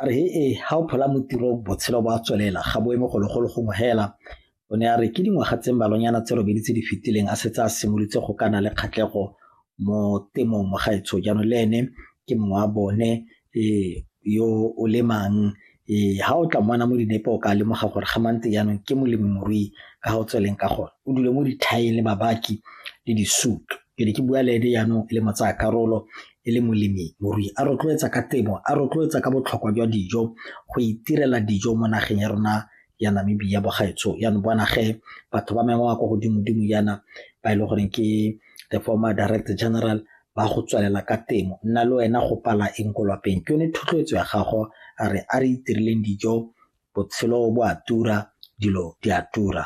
a re he e ga o phola mo tirong botshelo bo a tswelela ga bo eme gologolo gongwe hela o ne a re ke dingwaga tse mmalonyana tse robedi tse di fetileng a setse a simolotse go kana le kgatlego mo temong mo gaetsho jaanong le ene ke mongwe wa bone um yo o lemang um ga o tla mmana mo dinepe o ka lemoga gore ga mante jaanong ke molemirui ka ga o tsweleng ka gone o dule mo dithaeng le babaki le disutu ke ne ke bua le ene jaanong e le motsaya karolo e le molemi morui a rotloetsa ka temo a rotloetsa ka botlhokwa jwa dijo go itirela dijo mo nageng ya rona ya namibia bogaetsho jaanong bona ge batho ba mengwe kwa godimo-dimo jaana ba e le goreng ke the former director general ba go tswelela ka temo nna le wena go pala eng ko lwapeng ke yone thotloetso ya gago a re a re itirileng dijo botshelo bo a tura dilo di a tura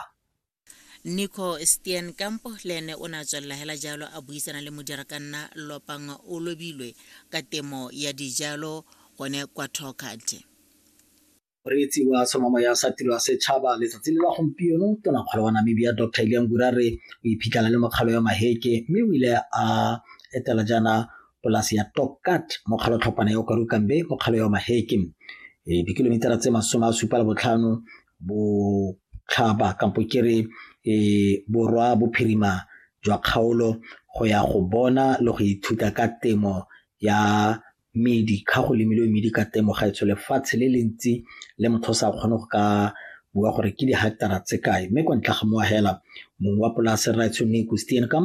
nico stien kampo le ene o ne a tswelela hela jalo a buisana le modirakanna lopang o lobilwe ka temo ya dijalo gone kwa tokate Moreetsi wa tlhomamo ya sa tiro ya setšhaba letsatsi le la gompieno tonakgolo wa Namibia Dr Iliya Ngura re o iphitlhela le mokgalo ya Maheke mme o ile a etela jaana polasi ya Tokat mo kgalotlhopana ya Okarukambe mo kgalo ya Maheke e dikilomitara tse masome a supa le botlhano botlhaba kampo ke re borwa bophirima jwa kgaolo go ya go bona le go ithuta ka temo ya medi ga go lemile medi ka temo ga etsho lefatshe le le ntsi le motho o sa kgone go ka bua gore ke di-hectara tse kae mme kwa ntle ga moagela mongwe wa polase rraetsho ne kustian kam